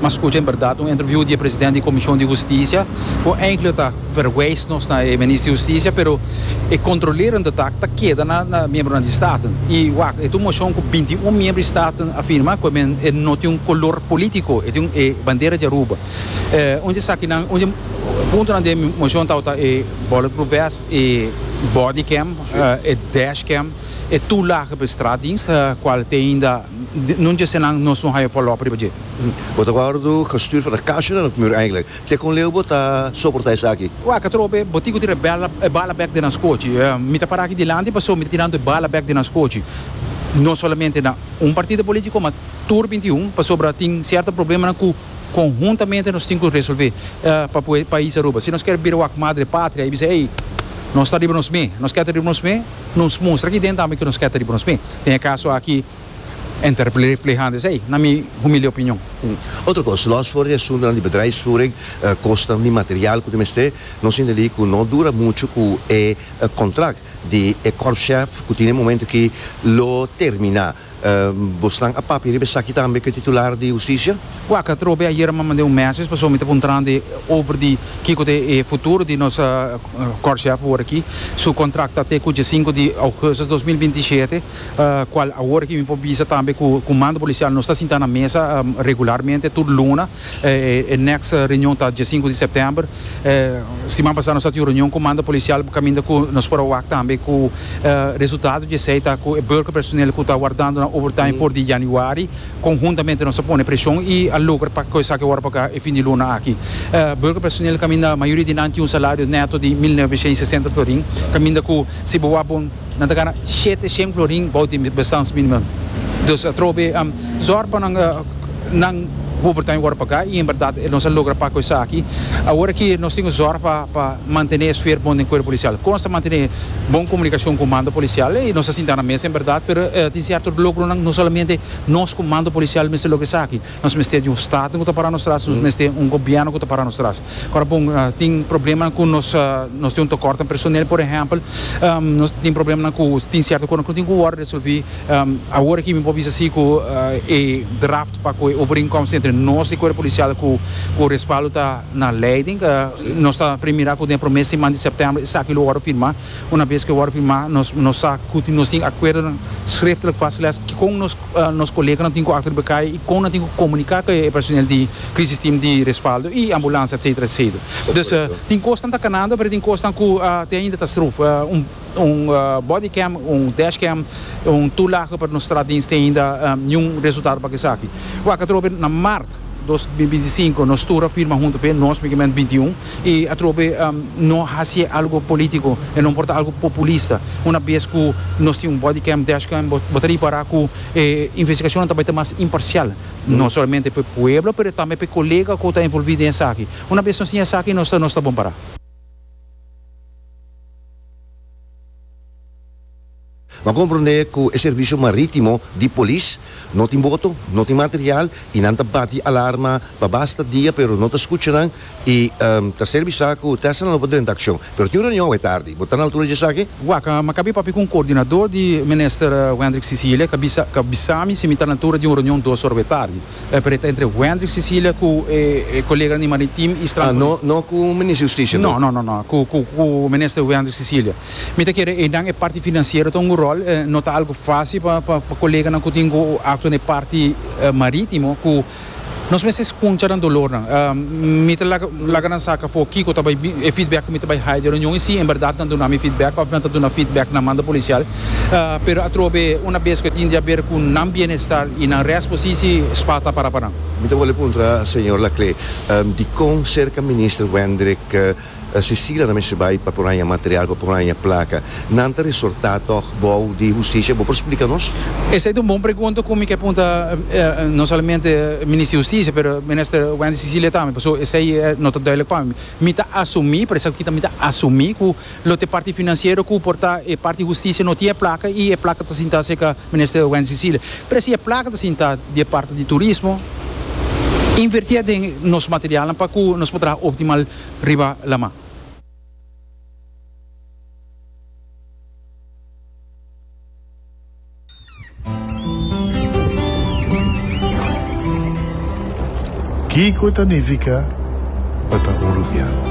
M'a scucha en berdad un interview di e president di Comision di Husticia cu eindelijk ta verwijs nos na e minister di Husticia pero e controlerende taak ta keda na na miembronan di Staten. Y wak, e ta un motion cu binti y un miembro di Staten a firma cu e men e no tin un color politico, e tin e bandera di Aruba. Eh, un di e sakinan, un di e puntonan den e motion tabata e bulletproof vest, e bodycam, eh, e dashcam, e toelage pa e straatdienst, cual t'ainda. Nun djese nan nos no haya follow up riba dje. Bo ta wordo gestuurd for a kasha na nos mur eigenlijk. Te kon leu bo ta soporta esaki? Waka tropa e botiku tira e bala e bala bek den nos kochi. Mi ta para aki dilanti paso mi ta tirando e bala bek den nos kochi. No solamente na un partido politico ma tur binti i un pasobra tin cierto problemanan cu conhuntamente nos tin cu resolve pa pue pais Aruba. Si nos kier bira wak madre patria y bisa ey nos ta riba nos me, nos kier ta riba nos me. Nos mustra aki den tambe ku nos ke ta riba nos pie. Den e kaso aki e ta reflehá esei, na mi humilde opinion. Otro kos, lòs for di asuntunan di bedrijfsvoering, kostanan di material ku ta mester, nos sinti alí ku no dura muchu ku e kontrakt di e kòrpschef ku tin e momentu aki lo terminá. Bosnan a papia riba esaki tambe ku e titular di hustisia? Wak atrobe ayera mi mand'é un mèsej pasobra mi ta puntrandi over di kiko ta e futuro di nos kòrshèf awor aki. Su kontrakt ta te ku diesinku di ougustus dos mil binti shete, kual awor aki mi por bisa tambe ku Kumando Polisial nos ta sinta na mesa regularmente tur luna. E next reunion ta dia sinku di september. Siman pasa nos a tin un reunion ku manda polisial kaminda ku nos por a wak tambe ku resultado di esei ta ku e burger personeel ku ta wardando nan overtime for di januari konhuntamente nos a pone preshon i a logra pa kos esaki wòrdu paga e fin di luna aki. Burger personeel kaminda mayoria di nan tin un salario neto di mil noveshen i sesenta florin kaminda ku si bo wak bo Nan ta gana shete shen florin bou di bestaansminimum. Dus atrobe zòr pa nan nan overtime wòrdu pagá i en bèrdat nos a logra pak ku esaki. Awor aki nos tin ku zòr pa mantené e sfer bon den kuerp polisial. Kon nos ta mantené bon komunikashon ku mando polisial? Ei, nos a sinta na mesa en bèrdat, pero tin sierto logronan no solamente nos ku mando polisial mester logra esaki. Nos mester di un staten ku ta para nos tras, nos mester un gobièrnu ku ta para nos tras. Kòrda bon, tin problemanan ku nos nos tin un tokòrt den personel, por ehèmpel. Nos tin problemanan ku tin sierto kosnan ku no tin ku wòrdu resolví. Awor aki mi por bisa si ku e draft pa ku e overeenkomst entre nos di Cuerpo Policial ku ku respaldo ta na leiding. Nos ta prim mira ku den e promé siman di sèptèmber esaki lo wòrdu firmá. Unabes ku e wòrdu firmá nos nos sa ku nos tin akuerdonan srèftlik vastgelegd kikon nos. nos koleganan tin ku akta riba kai i kon nan tin ku komuniká ku e personel di Crisis Team di Respaldo i Ambulansia etcetera etcetera. Dus tin kosnan ta kanando pero tin kosnan ku te ainda ta struf. Un body cam, un dash cam, un tur laga pa nos trat dins te ainda niun resultado pa esaki. Wak atrobe na mart dos mil binti sinku nos tur a firma huntu p'e nos, migement binti un. i atrobe no hasi e algo politico e no por ta algo populista una bes cu nos tin un body cam dash cam bo ta ripara cu e investigacionnan ta bay ta mas imparcial no solamente p'e pueblo pero tambe p'e colega cu ta envolvi den esaki una bes nos tin esaki nos ta nos ta bon para. Bo a komprondé ku e servisio marítimo di polis no tin boto, no tin material i nan ta bati alarma pa basta dia pero no ta skucha nan i ta ser bisá ku Tesla no por drenta akshon. Pero tin un reunion awe tardi. Bo ta na altura di dje esaki? Wak, mi a kabe papia ku un koordinadó di Minister Wendrik Cecilia, e a bisá mi si mi ta na altura di un reunion dos ora awe tardi. Pero e ta entre Wendrik Cecilia ku e koleganan di Maritim i Strandpolis. No ku Minister Justisia? No, no, no, no. Ku Minister Wendrik Cecilia. Mi ta kere ei nan e parti financiero ta un rol no ta algo faci pa pa coleganan cu tin cu actua na e parti maritimo cu nos mester scunsha nan dolor nan mi ta laga laga nan saca afo kico ta bay e feedback cu mi ta bay haya di e reunion y si en berdad nan duna mi feedback of nan ta duna feedback na mando policial pero atrobe una bes cu e tin di haber cu nan bienestar y nan rest posici spa ta para pa nan. Mi ta wòrdu puntra señor Laclé dicon cerca Minister Wendrick. Cecilia ta mester bai pa por haña material, pa por haña placa. Nan ta resorta tog bou di Husticia. Bo por splica nos? Esei ta un bon pregunta cu mi ke punta no solamente Minister di Husticia pero Minister Wendy Cecilia tambe, paso esei no ta duidelijk pa mi. Mi ta asumi, por esaki mi ta asumi cu lo te parti financiero cu por ta e parti Husticia no tin e placa y e placa ta sinta cerca Minister Wendy Cecilia, Presi e plaka ta sinta di e parti di turismo, invertié den nos materialnan pa ku nos por traha optimal riba laman. Kiko ta nifiká pa ta hulubiá?